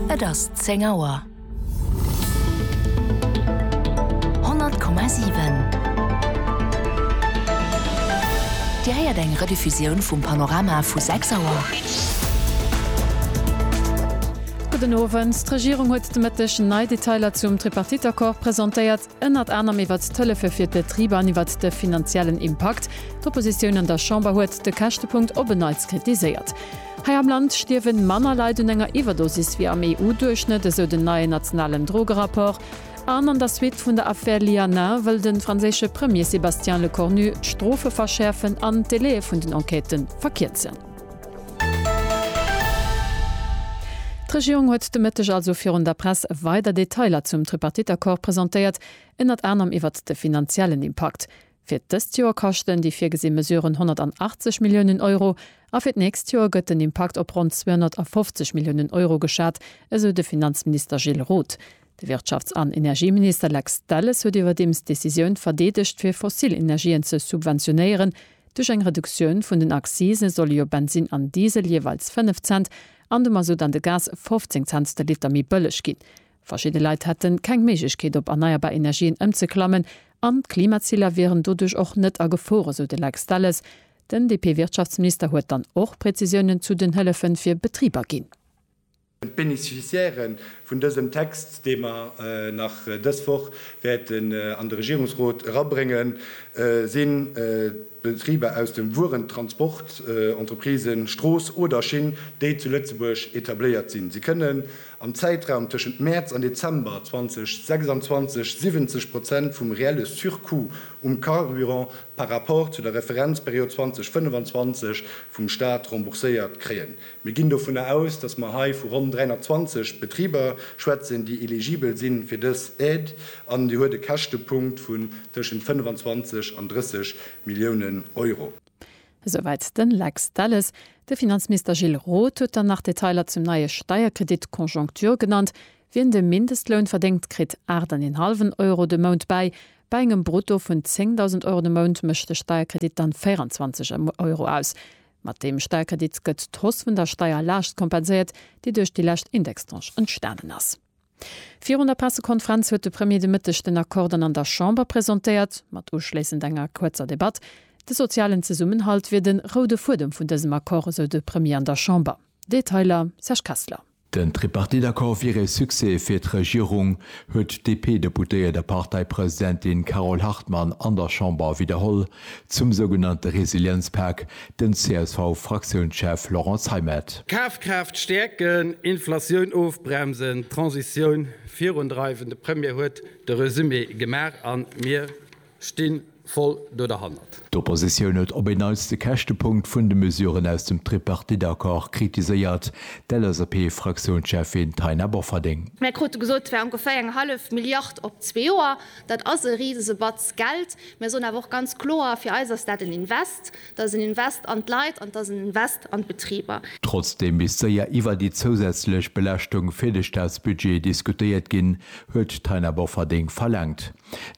Et ass 10 Auer. 100,7 Dir héiert eng Rediffusioun vum Panorama vu 6 Auer. Gudden Owend. D'Regierung huet de Mëtteg nei Detailer zum Tripartite-Accord presentéiert. ënnert anerem iwwert d'Hëllefe fir d'Betriber an iwwert de finanziellen Impakt. D'Oppositioun an der Chamber huet de Käschtepunkt op en Neits kritiséiert. Hei am Land stierwe manner Leit un enger Iwwerdosis wéi am EU-Duerchschnëtt, esou den neien nationalen Drogerapport. An an der Suite vun der Affär Lianin wëll de franséische Premier Sébastien Lecornu d'Strofe verschäerfen an d'Delaie vun den Enquêtë verkierzen. D'Regierung huet de Mëtteg also virun der Press weider Detailer zum Tripartite-Accord presentéiert, ënnert anerem iwwert de finanziellen Impakt. Fir dëst Joer kaschten déi virgesi Mesuren 180 Milliounen Euro a fir d'nächst Joer gëtt den Impakt op ronn 250 Milliounen Euro geschat, esou de Finanzminister Gilles Roth. De Wirtschafts an Energieminister Lex Delles huet iwwerdeems d'Decisioun verdeedegt fir fossil Energien ze subventionéieren. Duerch eng Reduktioun vun den Accisen solle jo Bensin an Diesel jeeweils 5 Cent an de Mazout an de Gas 15 Cents de Liter méi bëlleg ginn. Verschidde Leit hätte keng Méiglechkeet op erneierbar Energien ëmzeklammen an d'Klimaziler wieren doduerch och net a Gefor, esou de Lex Delles. Den DP-Wirtschaftsminister huet dann och Prezisiounen zu den Hëllefe fir Betriber ginn. D'Beneficiairë vun dësem Text, dee mer nach dës Woch wäerten an de Regierungsrot erabréngen, si Betriber aus dem Wuerentransport, Entreprisen, Strooss oder Schinn, déi zu Lëtzebuerg etabléiert sinn. Si kënnen am Zäitraum tëschent Mäerz an Dezember 2026 70 Prozent vum reelle Surcoût um Carburant par rapport zu der Referenzperiod 2025 vum Staat rembourséiert kréien. Mir ginn dovunner aus, dass mer hei vu ronn 320 Betriber schwätzen, déi eligibel si fir dës Aide, an déi huet e Käschtepunkt vun tëschent 25 an 30 Milliounen Euro. Esouwäit de Lex Delles. De Finanzminister Gilles Roth huet dann nach Detailer zum neie Steierkredit Conjoncture genannt. Wien de Mindestloun verdéngt, kritt aacht an een hallwen Euro de Mount bäi. Bei engem Brutto vun 10.000 Euro de Mount mécht de Steierkredit dann 24 Euro aus. Mat deem Sperkredit gëtt d'Hausse vun der Steierlaascht kompenséiert, déi duerch déi lescht Indextranche entstanen ass. Virun der Pressekonferenz huet de Premier de Mëtteg den Accord dann an der Chamber presentéiert, mat uschléissend enger kuerzer Debatt. De sozialen Zesummenhalt wier de roude Fuedem vun dësem Accord, esou de Premier an der Chamber. Detailer, Serge Kessler. Den Tripartite-Accord wier ee Succès fir d'Regierung, huet d'DP-Deputéiert a Parteipresidentin Carole Hartmann an der Chamber widderholl. Zum sougenannte Resilienzpak, den CSV-Fraktiounschef Laurent Zeimet. Kafkraaft stäerken, Inflatioun ofbremsen, d'Transitioun virundreiwen, de Premier huet de Resumé gemaach a mir Stinn voll do derhannert. D'Oppositioun huet op en Neits de Käschtepunkt vun de Mesuren aus dem Tripartite-Accord kritiséiert, d'LSAP-Fraktiounscheffin Taina Bofferding. Mir krute gesot, et wär ongeféier eng hallef Milliard op zwee Joer. Dat ass e Risesebatz Geld. Mir soen awer och ganz kloer, Fir eis ass dat en Invest. Dat ass en Invest an d'Leit an et ass en Invest an d'Betriber. Trotzdeem misst séier iwwer déi zousätzlech Belaaschtung fir de Staatsbudget diskutéiert ginn, huet d'Taina Bofferding verlaangt.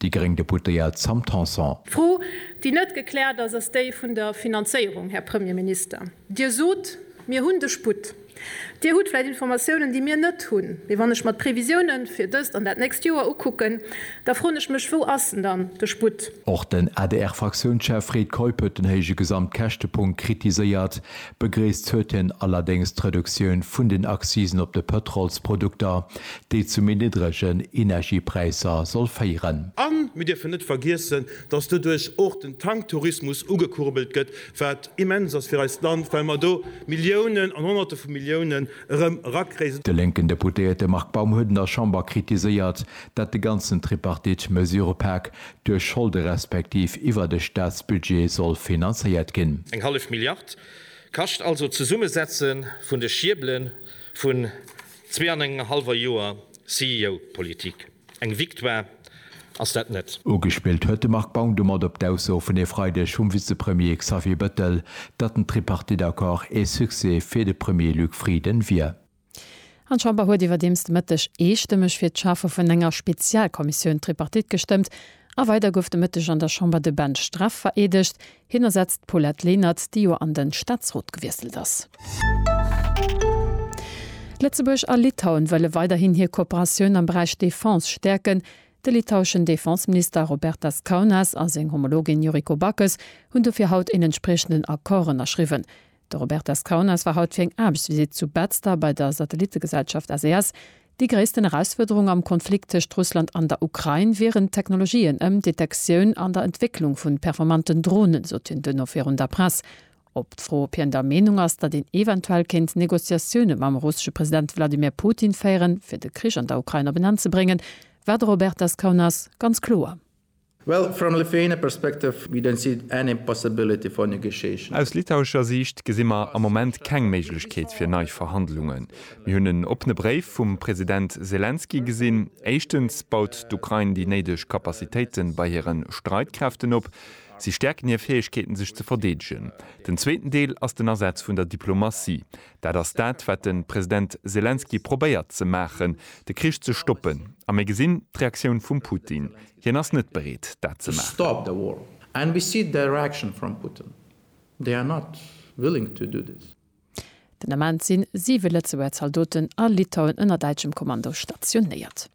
Déi gréng Deputéiert Sam Tanson. D'Fro, déi net gekläert ass, ass déi vun der Finanzéierung, Här Premier Minister. Dir sot, Mir hunn de Sputt. Dir hutt vläicht Informatiounen, déi mir net hunn. Mee wann ech mer d'Previsiounen fir dëst an dat nächst Joer ukucken, da froen ech mech, Wou ass en dann, de Sputt? Och den ADR-Fraktiounschef Fred Keup huet den héije Gesamtkäschtepunkt kritiséiert. Begréisst huet hien allerdéngs d'Reduktioun vun den Accisen op de Pëtrolsprodukter, déi zu méi niddregen Energiepräisser soll féieren. A mir dierfen net vergiessen, datt doduerch och den Tanktourismus ugekurbelt gëtt, wat immens ass fir eist Land, well mer do Milliounen an Honnerte vu Milliounen erëm erakréien. De lénken Deputéierte Marc Baum huet an der Chamber kritiséiert, dat de ganzen Tripartite-Mesurëpak duerch Scholde respektiv iwwert e Staatsbudget soll finanzéiert ginn. Eng hallef Milliard kascht also d'Zesummesetze vun de Schiebele vun Zwee an engem hallwer Joer CEO-Politik, eng Victoire ass dat net. Ugespillt huet de Marc Baum domat op d'Ausso vun e Freideg vum Vizepremier Xavier Bettel, datt den Tripartite-Accord ee Succès fir de Premier Luc Frieden wier. An d'Chamber huet iwwerdeems de Mëtteg eestëmmeg fir d'Schafe vun enger Spezialkommissioun Tripartite gestëmmt. A weider gouf de Mëtteg an der Chamber de Ben Streff vereedegt, Hien ersetzt d'Paulette Lenert, déi jo an de Staatsrot gewiesselt ass. Lëtzebuerg a Litauen wëlle weiderhin hir Kooperatioun am Beräich Defense stäerken. De litaueschen Defenseminister Robertas Kaunas a seng Homologin Yuriko Backes hunn dofir haut een entspriechenden Accord ënnerschriwwen. De Robert Descaunes war haut fir eng Aarbechtsvisitt zu Betzder bei der Satellittegesellschaft SES. Déi gréissten Erausfuerderung am Konflikt tëscht Russland an der Ukrain wieren d'Technologien ëm d'Detektioun an der Entwécklung vun performanten Dronen, sot hien duerno virun der Press. Op d'Fro, ob hien der Meenung ass, datt een eventuell kéint Negociatioune mam russesche President Wladimir Putin féieren, fir de Krich an der Ukrain op en Enn ze bréngen, war de Robert Descaunes ganz kloer. Well from Lithuania perspective we don't see any possibility for negotiation. Aus litauescher Siicht gesi mer am Moment keng Méiglechkeet fir nei Verhandlungen. Mir hunn en oppene Bréif vum President Selenskyj gesinn. Éischtens baut d'Ukrain déi néideg Kapazitéite bei hire Streitkräften op. Si stäerken hir Fäegkeeten sech ze verdeedegen. Den zweeten Deel ass den Asaz vun der Diplomatie. Dat ass dat wat de President Selenskyj probéiert ze maachen, de Krich ze stoppen. A mir gesinn d'Reaktioun vum Putin. Hien ass net bereet, dat ze maachen. Den Ament si siwe Lëtzebuerger Zaldoten a Litauen ënner däitschem Kommando stationéiert.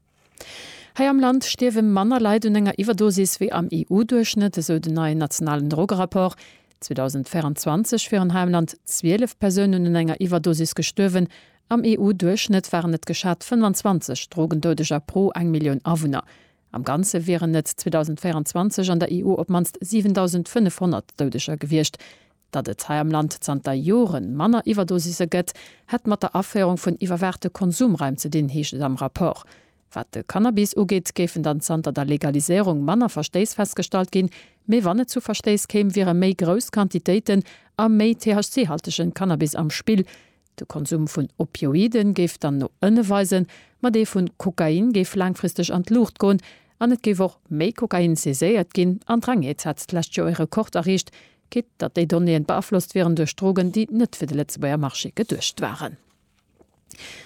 Hei am Land stierwe manner Leit un enger Iwwerdosis wéi am EU-Duerchschnëtt, esou den neien nationalen Drogerapport. 2024 wieren hei am Land 12 Persounen un enger Iwwerdosis gestuerwen, Am EU-Duerchschnëtt waren et geschat 25 Drogendoudeger pro eng Millioun Awunner. Am Ganze wieren et 2024 an der EU op d'mannst 7.500 Doudeger gewiescht. Datt et hei am Land zanter Jore manner Iwwerdosise gëtt, hätt mat der Aféierung vun iwwerwaachte Konsumraim ze dinn, heescht et am Rapport. Wat de Cannabis ugeet, géifen dann zanter der Legaliséierung manner Verstéiss festgestallt ginn. Mee wann et zu Verstéiss kéim, wiere méi grouss Quantitéiten a méi THC-haltege Cannabis am Spill. De Konsum vun Opioiden géif dann no ënne weisen, ma dee vu Kokain géif laangfristeg an d'Luucht goen an et géif och méi Kokain saiséiert ginn. An d'Rengeez hat d'lescht Joer ee Rekord erreecht, quitt datt déi Donnéeën beaflosst wieren duerch Drogen, déi net fir de Lëtzebuerger Marché geduecht waren.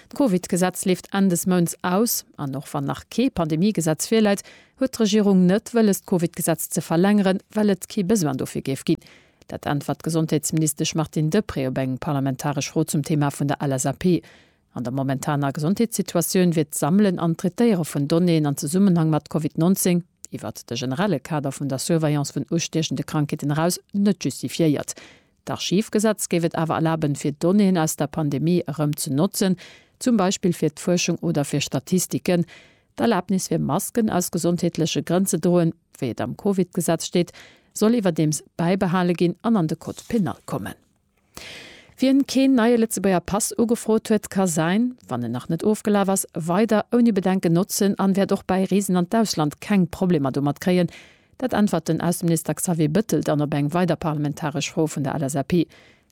D'Covid-Gesetz leeft Enn des Mounts aus, an och wann nach kee Pandemie-Gesetz virläit, huet d'Regierung net wëlles d'Covid-Gesetz ze verlängeren, well et kee Besoin dofir géif ginn. Dat äntwert d'Gesondheetsministesch Martine Deprez op eng parlamentaresch Fro zum Thema vun der LSAP. An der momentaner Gesondheetssituatioun wier d'Sammelen an d'Traitéiere vun Donnéeën an Zesummenhang mat Covid 19, iwwert de generelle Kader vun der Surveillance vun ustiechende Krankheeten eraus, net justifiéiert. D'Archivgesetz géif et awer erlaben, fir Donnéeën aus der Pandemie erëm ze notzen, zum Beispill fir d'Fuerschung oder fir Statistiken, D'Erlaabnis fir Masken aus gesondheetleche Grënn ze droen, wéi et am Covid-Gesetz steet, soll iwwerdeems bäibehale ginn an an de Code pénal kommen. Wien keen neie Lëtzebuerger Pass ugefrot huet, ka säin, wann en nach net ofgelaf ass, weider ouni Bedenken notzen an wäert och bäi Reesen an d'Ausland keng Problemer domat kréien. Dat äntwert den Ausseminister Xavier Bëttel dann op eng weider parlamentaresch Fro vun der LSAP.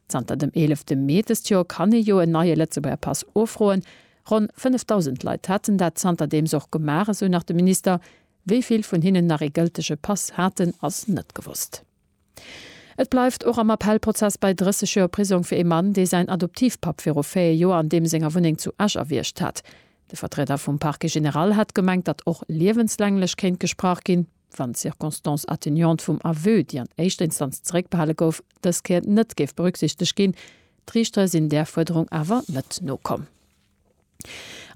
Zanter dem 11 Mee dëst Joer kann ee jo en neie Lëtzebuerger Pass ufroen. Ronn 5.000 Leit haten dat zanterdeems och gemaach, esou nach de Minister. Wéi vill vun hinnen nach ee gëltege Pass haten, ass net gewosst. Et bleift och am Appellprozess bei 30 Joer Prisong fir ee Mann, dee säin Adoptivpapp viru 4 Joer an deem senger Wunneng zu Esch erwiergt hat. De Vertrieder vum Parquet général hat gemengt, datt och liewenslänglech kéint gesprach ginn. wann d'Circonstance atténuante vum Aveu, déi an éischter Instanz zeréckbehale gouf, dës Kéier net géif berücksichtegt ginn. D'Riichter sinn där Fuerderung awer net nokomm.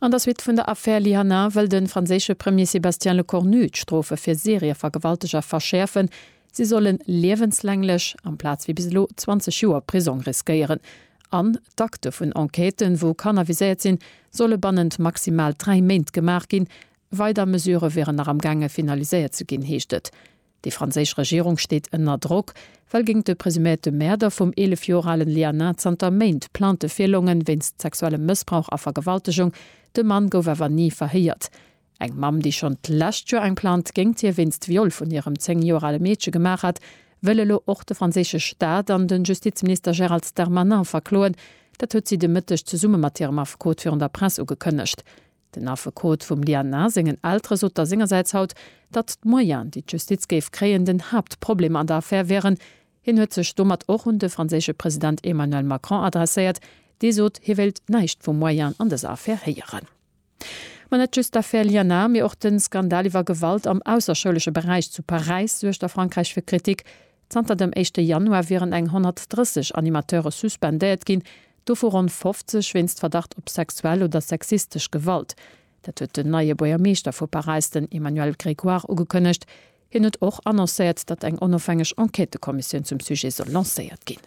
An der Suite vun der Affär Lihana wëll de franséische Premier Sébastien Lecornu d'Strofe fir Serievergewalteger verschäerfen. Si solle liewenslänglech, amplaz wéi bis elo 20 Joer Prisong riskéieren. An d'Akte vun Enquêten, wou Kanner viséiert sinn, solle bannent maximal dräi Méint gemaach ginn, Weider Mesurë wieren nach am gaange finaliséiert ze ginn, heescht et. Déi franséisch Regierung steet ënner Drock, well géint de presuméierte Mäerder vum 11 Joer ale Lianin zanter Méint Plainte virlongen, wéinst sexuellem Mëssbrauch a Vergewaltegung. De Mann gouf awer ni verhéiert. Eng Mamm, déi schonn d'lescht Joer eng Plainte géint hie wéinst Viol vun hirem 10 Joer ale Meedche gemaach hat, wëll elo och de franséische Staat an de Justizminister Gérald Darmanin verkloen. Dat huet si de Mëtteg zesumme mat hirem Affekot virun der Press ugekënnegt. Den Affekot vum Diana sengen Eltere sot da sengersäits haut, datt d'Moyenen, déi d'Justiz géif kréien, den Haaptproblem an der Affär wären. Hien huet sech domat och un de franséische President Emmanuel Macron adresséiert, dee sot, hie wéilt näischt vu Moyenen an dëser Affär héieren. Ma net just d'Affär Liana, mee och de Skandal iwwer Gewalt am ausserschoulesche Beräich zu Paräis suergt a Frankräich fir Kritik. Zanter dem éischte Januar wieren eng 130 Animateure suspendéiert ginn, dovu ronn 50 wéinst Verdacht op sexuell oder sexistesch Gewalt. Dat huet den neie Buergermeeschter vu Paräis, den Emmanuel Grégoire ugekënnegt. Hien huet och annoncéiert, datt eng onofhängeg Enquêtëkommissioun zum Sujet soll lancéiert ginn.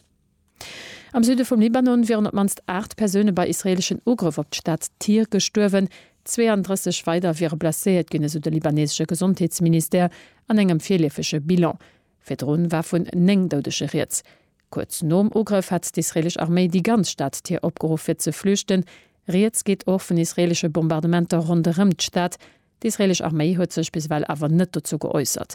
Am Süde vum Libanon wieren op d'mannst 8 Persoune bei israeeleschen Ugrëff op d'Stad Tyr gestuerwen. 32 weider wiere blesséiert ginn, esou de libaneesesche Gesondheetsministère an engem virleefege Bilan. Virdru war vun 9 Doudege rieds. Kuerz nom Ugrëff hat d'israeelesch Arméi déi ganz Stad Tyr opgeruff fir ze flüchten. Rieds geet och vun israeelesche Bombardementer ronderëm d'Stad. D'israeelesch Arméi huet sech bis ewell awer net dozou geäussert.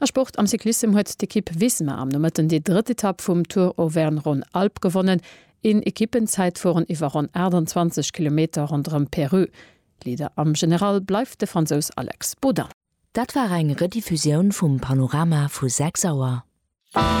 A Sport, Am Cyclissem huet d'Ekipp Visma am Nomëtten déi drëtt Etapp vum Tour Auvergne-Rhône-Alpes gewonnen. Een Ekippenzäitfueren iwwer ronn 28 Kilometer ronderëm Périgueux. Leader am General bleift de Fransous Alex Baudin. Dat war eng Rediffusioun vum Panorama vu 6 Auer.